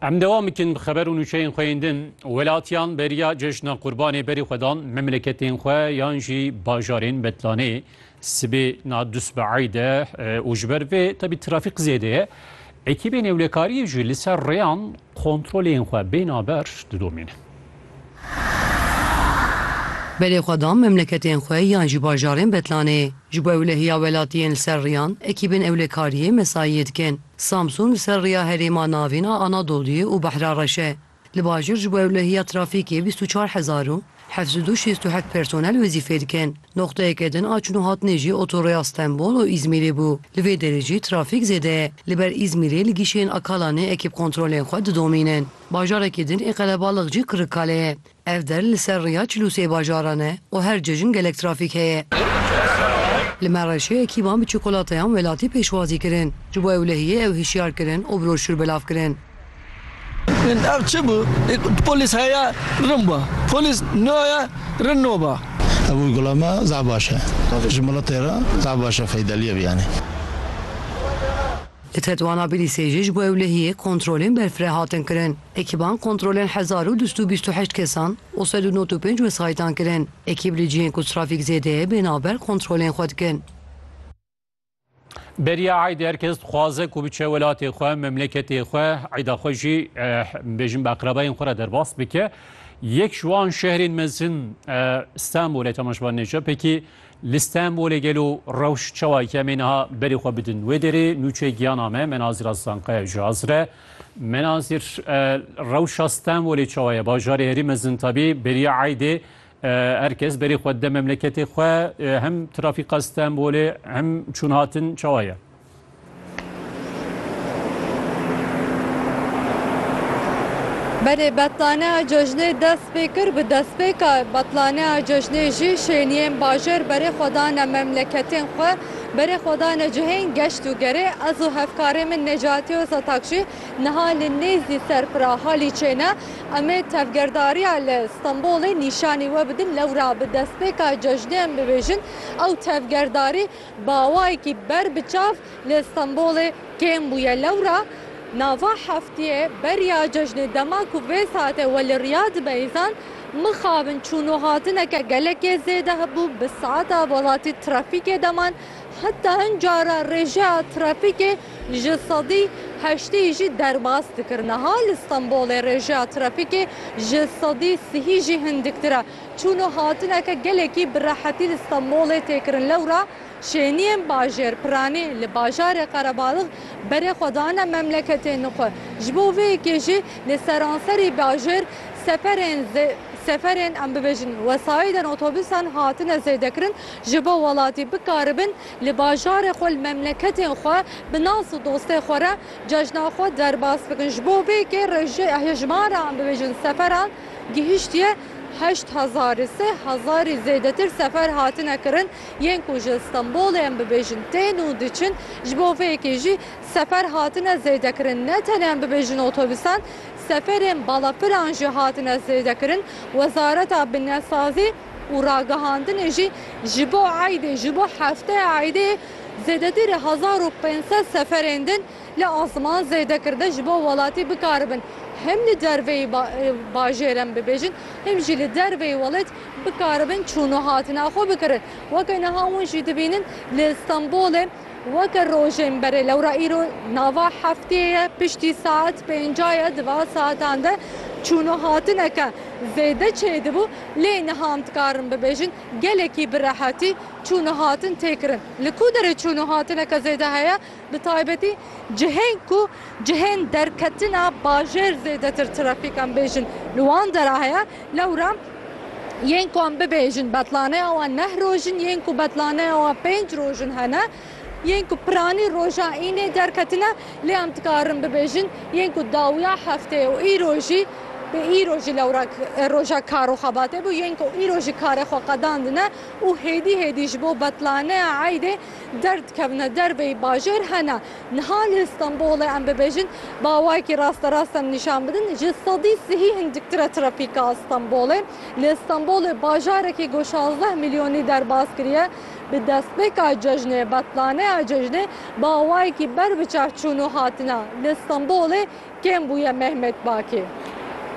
Em devam bikin bi xeber û nûçeyên xwe yên din. Welatiyan beriya cejna qurbanê berî xwe dan memleketên xwe yan jî bajarên Betlanê sibê na dusbehayî de û ji ber vê tebî trafîk zêde ye. Ekîbên ewlekariyê jî li ser rêyan kontrolên xwe bênaber didomînin. Belê xwe da memleketên xwe yan jî bajarên Betlanê. Ji bo ewlehiya welatiyên li ser riyan, ekîbên ewlekariyê mesaiyê dikin. Samsûn li ser riya herêma navîn a Anadoluyê û Behra Reş e. Li bajir ji bo ewlehiya trafîkê bîst û çar hezar û heft sed û şêst û heft personel wezîfê dikin. Noqteyeke din a çûn û hatinê jî otorêya Stenbol û Îzmîrê bû. Li vê derê jî trafîk zêde ye. Li ber Îzmîrê li gîşeyên Akalanê ekîb kontrolên xwe didomînin. Bajarekî din ê qelebalix jî Kirikkale ye. Ev der li ser rêya çil û sê bajaran e û her cejn gelek trafîk heye. Li Mereşê ekîban bi çokolateyan welatî pêşwazî kirin. Ji bo ewlehiyê ew hişyar kirin û broşûr belav kirin. Ev çi bû? Polîs heya rin ba. Polîs naya rin no ba. Ev gula me zaf baş e. Ji miletê re zaf baş e feydeliyê biyane. Li Tetwana Bilîsê jî ji bo ewlehiyê kontrolên berfireh hatin kirin. Ekîban kontrolên hezar û du sed û bîst û heşt kesan û sed û nod û pênc wesayîtan kirin. Ekîb li cihên ku trafîk zêde ye bên a ber kontrolên xwe dikin. Beriya Eidê her kes dixwaze ku biçe welatê xwe, memleketê xwe, Eida xwe jî bêjin bi eqrebayên xwe re derbas bike. Yek ji wan şehrên mezin Stenbolê, tema ji ber Nêcepekî Li Stenbolê gelo rewş çawa ye? Em ê niha berê xwe bidin wê derê. Nûçeyê giyana me Menazîr Aslankaya ji hazir e. Menazîr, rewşa Stenbolê çawa ye? Bajarê herî mezin tabî beriya eydê her kes berê xwe dide memleketê xwe. Hem trafîka Stenbolê hem çûnhatin çawa ye? Belê betlaneya cejnê dest pê kir, bi destpêka betlaneya cejnê jî şêniyên bajêr berê xwe dane memleketên xwe, berê xwe dane cihên geşt û gerê. Ez û hevkarê min Necati Ozatag jî niha li nêzî Serpira Halîçê ne. Em ê tevgerdariya li Stenbolê nîşanî we bidin, lewra bi destpêka cejnê em bibêjin ew tevgerdarî Bawayekî ber bi çav li Stenbolê kêm bûye. Lewra nava heftiyê beriya cejnê dema ku vê saetê we li Riyad be îzan, mixabin çûn û hatineke gelekê zêde hebû, bi saeta welatî trafîkê deman, heta hin cara rêjeya trafîkê ji sedî heştê jî derbas dikirin. Niha li Stenbolê rêjeya trafîkê ji sedî sihî jî hindiktir e. Çûn û hatineke gelekî bi rehetî li Stenbolê tê kirin lewra şêniyên bajêr piranî li bajarê Qerebalix berê xwe dane memleketên xwe. Ji bo vê yekê jî li seranserî bajêr seferên seferên em bibêjin wesayîdên otobûsan hatine zêdekirin ji bo welatî bikaribin li bajarê xwe li memleketên xwe bi nas û dostê xwe re cejna xwe derbas bikin. Ji bo vê yekê hejmara em bibêjin seferan Gihiştiye heşt hezar sê hezarî zêdetir sefer hatine kirin yên ku ji Stenbolê em bibêjin tên û diçin ji bo vê yekê jî sefer hatine zêdekirin ne tenê em bibêjin otobîsan seferên balafiran jî hatine zêdekirin wezareta binnesazî û ragihandinê jî ji bo eydê ji bo hefteya eydê zêdetirî hezar û pênc sed seferên din Li Asiman zêdekirde ji bo welatî bikaribin hem li derveyî bajêren bibêjin hem jî li derveyî welêt bikaribin çûn û hatina xwe bikirin. Weke niha hûn jî dibînin li Stenbolê weke rojên berê lewra îro nava heftê ye piştî saet pênca ye di van saetan de çûn û hatineke zêde çêdibû lê niha em dikarin bibêjin gelekî bi rehetî çûn û hatin tê kirin. Li ku derê çûn û hatineke zêde heye? Bi taybetî cihên ku cihên derketina bajêr zêdetir trafîk em bêjin li wan de re heye, lewra yên ku em bibêjin betlaneya wan neh roj in, yên ku betlaneya wan pênc roj in hene, yên ku piranî roja înê derketin e, lê em dikarin bibêjin yên ku dawiya hefteyê û îro jî bi îro jî lewra roja kar û xebatê bû, yên ku îro jî karê xwe qedandine û hêdî hêdî ji bo betlaneya eydê, derdikevne derbeyî bajêr hene. Niha li Stenbolê em bibêjin bawayekî rasterast em nîşan bidin ji sedî sihî hindiktir e trafîka Stenbolê. Li Stenbolê bajarekî ku şazdeh milyonî derbas kiriye bi destpêka cejnê betlaneya cejnê bawayekî ber bi çav çûn û hatina li Stenbolê Kêm bûye Mehmet Bakê.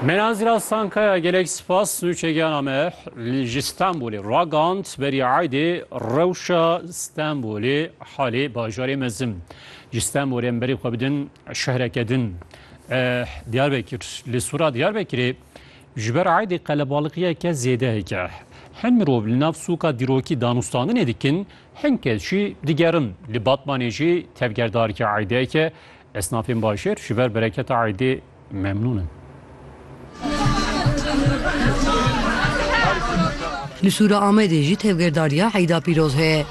Meran Zîrat Sankaya gelek spas û çegiyana me ji Stenbolê ragand berî Eydê rewşa Stenbolê halê bajarê mezin ji Stenbolê em berî xwe bidin şehreke din Diyarbekir li sora Diyarbekirê ji ber Eydê qelebaliqiyeke zêde heke hin mirov li nav sûka dîrokî danûstandinê dikin hin kes jî digerin li Batmanê jî tevgerdarî Eydeke Esnafên bajêr ji ber bereketa eydê memnûn in. Li Sûra Amedê jî tevgerdariya Eyda Pîroz heye.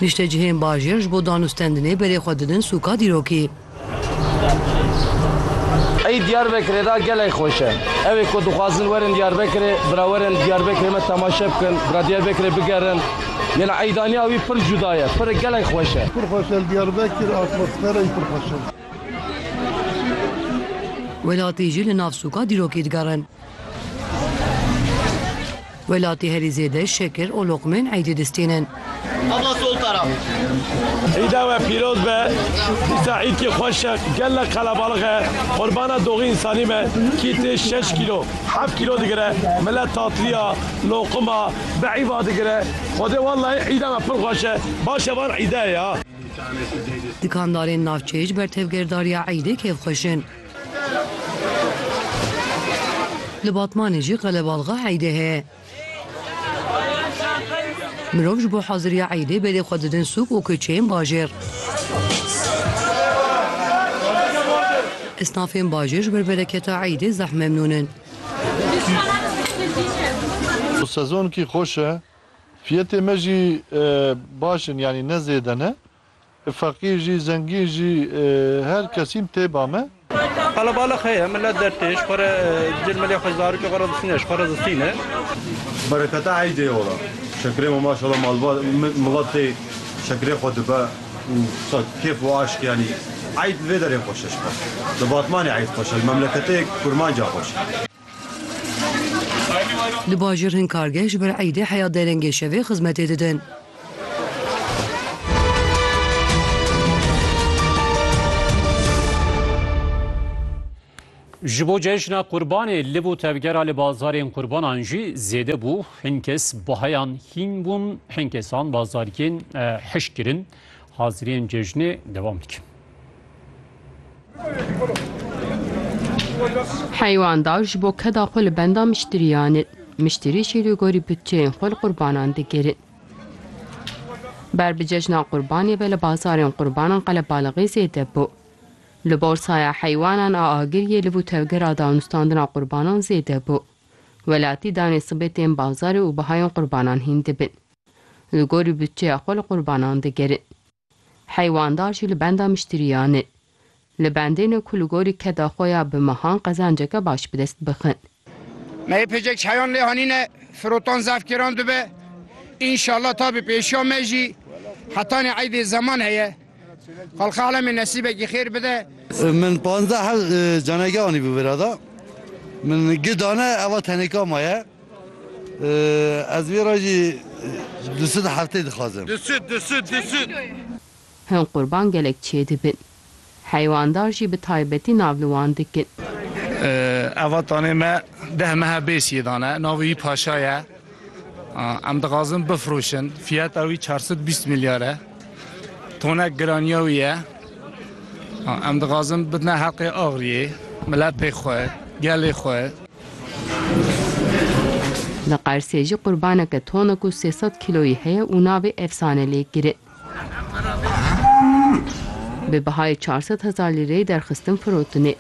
Niştecihên bajêr ji bo danûstendinê berê xwe didin sûka dîrokî. Eyd Diyarbekirê de gelek xweş e. Ev ê ku dixwazin werin Diyarbekirê, bira werin Diyarbekirê me temaşe bikin, bira Diyarbekirê bigerin. Gel eydaniya wî pir cuda ye, pir gelek xweş e. Pir xweş e li Diyarbekir, atmosfera yî pir xweş e. Welatî jî li nav sûka dîrokî digerin. Welatî herî zêde şekir û loqmeyên eydê distînin. Îda we pîroz be, dîsa îdkî xweş e, gelek qelebalix e, qurbana doxî însanî be, kî tê şeş kîlo, heft kîlo digire, mile tatilîya, loqima, Bi îva digire. Xwedê wellahî îda me pir xweş e. Baş e van îde ya. Dikandarên navçeyê ji ber tevgerdariya îdê kêfxweş in. Li Batmanê jî qelebalxa îdê heye. Mirov ji bo haziriya îdê berê xwe didin sûk û kuçeyên bajêr. Esnafên bajêr ji ber bereketa îdê zeh memnûn in. Sezonkî xweş e. Fiyetê me jî baş in yanî ne zêde ne. Feqîr jî zengîn jî her kesîn tê ba me. Qelebalix heye milet dertêj xwe re cilmilê xwe zarokê xwe re distîne ji xwe re distîne. Bereketa eydê ora. Şekirê me maşallah malbat milat tê şekirê xwe dibe. û sed kêf û aşk yanî eyd bi vê derê xweş e ji xwe. Li Batmanê eyd xweş e, li memleketê kurmanca xweş e. Li bajêr hin kargeh ji ber eydê heya derengê şevê xizmetê didin. Ji bo cejna Qurbanê lib û tevgera li bazarên qurbanan jî zêde bû. Hin kes baheyan hîn bûn, hin kesan bazarkên hişk kirin. Haziriyên cejnê dewam dikin. Heywandav ji bo keda xwe li benda miştiriyan in. Miştirî jî li gorî budçeyên xwe li qurbanan digirin. Ber bi cejna Qurbanê ve li bazarên qurbanan qelebalixî zêde bû. Li borsaya heywanan a Agiriyê li bo tevgera danûstandina qurbanan zêde bû. Welatî danê sibê tên bazarê û bihayên qurbanan hîn dibin. Li gorî budçeya xwe li qurbanan digerin. Heywandar jî li benda miştiriyan in. Li bendê ne ku li gorî keda xwe ya bi mehan qezanceke baş bi dest bixin. Me yê pêcek çayan lê hanîne, firotan zefkêran dibe. Înşallah ta bi pêşiya me jî hetanî eydê zeman heye. Xalqa alemê nesîbekî xêr bide. Min panzdeh hev canege anîbû vira de. Min gi dane eva tenêka ma ye. Ez vê re jî du sud heftê dixwazim. Hin qurban gelek çêdibin. Heywandar jî bi taybetî nav li wan dikin. Eva tanê me deh mehe bêsiyê dane. Navê wî Paşa ye. Em dixwazin bifroşin. Fiyata wî çar sed û bîst milyar e. Tonek giraniya wî ye. Em dixwazin bidine heqê Axriyê, miletê xwe, gelê xwe. Li Qersê jî qurbaneke tonek û sê sed kîloyî heye û navê Efsane lê kirin. Bi bihayê çar sed hezar lîreyê derxistin firotine.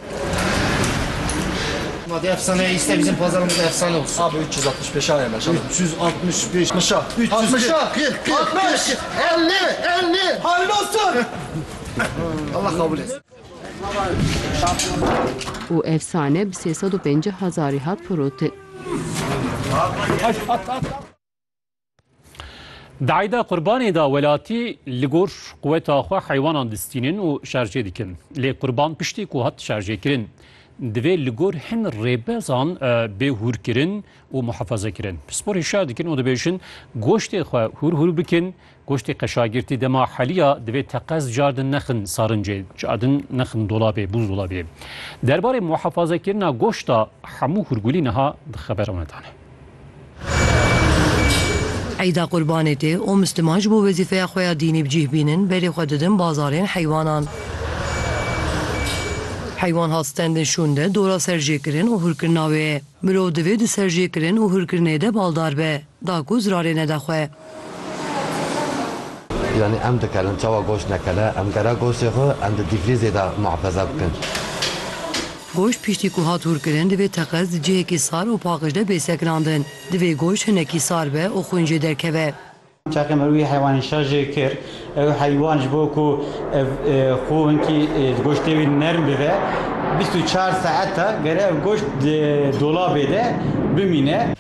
Û ev sane bi sê sed û pencî hezarî hat firotin. Dayda qurbanê da welatî li gor quweta xwe heywanan distînin û şerjê dikin. Lê qurban piştî ku hat şerjêkirin divê li gor hin rêbezan bê hûrkirin û muhefazekirin. Pisporê şer dikin û dibêjin goştê xwe hûr hûr bikin Goştê qeşagirtî dema heliya divê teqez cardin nexin sarincê, cardin nexin dolabê, bûzdolabê. Derbarê muhefazekirina goşta hemû hûrgulî niha di xeberan ve dane. Eyda Qurbanê tê û misliman ji bo wezîfeya xwe ya dînî bi cîh bînin berê xwe didin bazarên heywanan. Heywan hat stendin şûnde dora serjêkirin û hûrkirina wê. Mirov divê di serjêkirin û hûrkirinê de baldar be. Da ku zirarê neda xwe. Yanî em dikarin çawa goşt nekele, em gera goştê xwe em di dîfrîzê de muhefaza bikin. Goşt piştî ku hat hûrkirin divê teqez di cihekî sar û paqij de bê sekinandin. Divê goşt hinekî sar be û xwîn jê derkeve. Teqîm wî heywanên şer jê kir Ev heywan ji bo ku ev xwe hinkî di goştê wî nerm bibe, bîst û çar saet e gere ev goşt di dolabê de bimîne.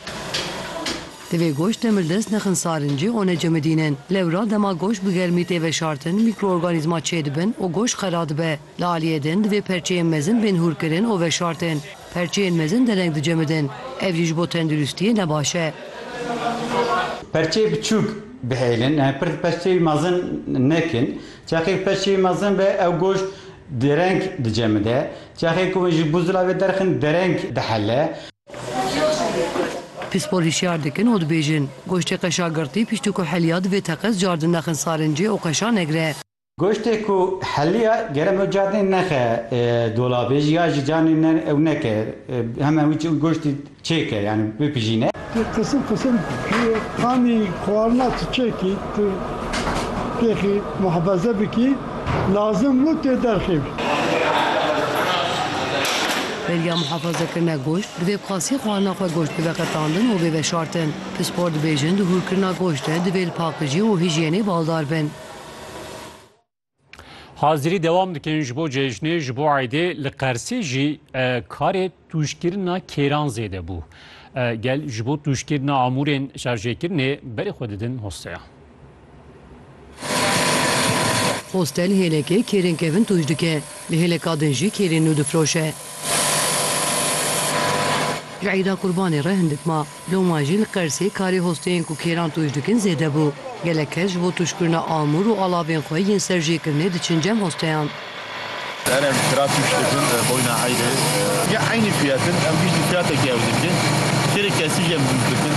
Divê goşt demirdest nexin sarincê û necemidînin. Lewra dema goşt bi germî tê veşartin, mîkroorganîzma çêdibin û goşt xera dibe. Li aliyê din divê perçeyên mezin bên hûrkirin û veşartin. Perçeyên mezin dereng dicemidin, ev jî ji bo tenduristiyê ne baş e. Perçeyê biçûk bihêlin, em ê pir di perçeyê mezin nekin. Çaxê ku perçeyê mezin be ew goşt dereng dicemide. Çaxê ku hûn ji bo zilavê derxin dereng dihele. Pispor hişyar dikin û dibêjin, goştê qeşa girtî piştî ku heliya divê teqez cardin nexin sarincê û qeşa negire. Goştê ku heliya gere min cadnê nexe dolabê jî ya jî canê ne ew neke heme wî çi goştî çêke yanî bipijîne. Ti qisim qisim qanî xwarina tu çêkî tu têxî muhefeze bikî lazim bû tê derxê bî. Beriya muhefezekirina goşt divê bi qasî xwarina xwe goşt bibe qetandin û bê veşartin. Pispor dibêjin di hûrkirina goşt de divê li pakijî û hîjyenê baldar bin. Hazirî dewam dikin ji bo cejnê ji bo eydê li Qersê jî karê tûjkirina kêran zêde bû. Gel ji bo tûjkirina amûrên şarjêkirinê berê xwe didin hosteya. Hostel hêlekê kêrên kevin tûj dike, li hêleka din jî kêrên nû difiroşe. Ji eyda qurbanê re hindik ma. Loma jî li Qersê karê hosteyên ku kêran tûj dikin zêde bû. Gelek kes ji bo tûjkirina amûr û alavên xwe yên ser jêkirinê diçin cem hosteyan. Kerem, kira tûj dikin boyna heyrê. Ya eynî fiyat in. Em jî ji fiyatekî ew dikin. Kêrê kesî jî em tûj dikin.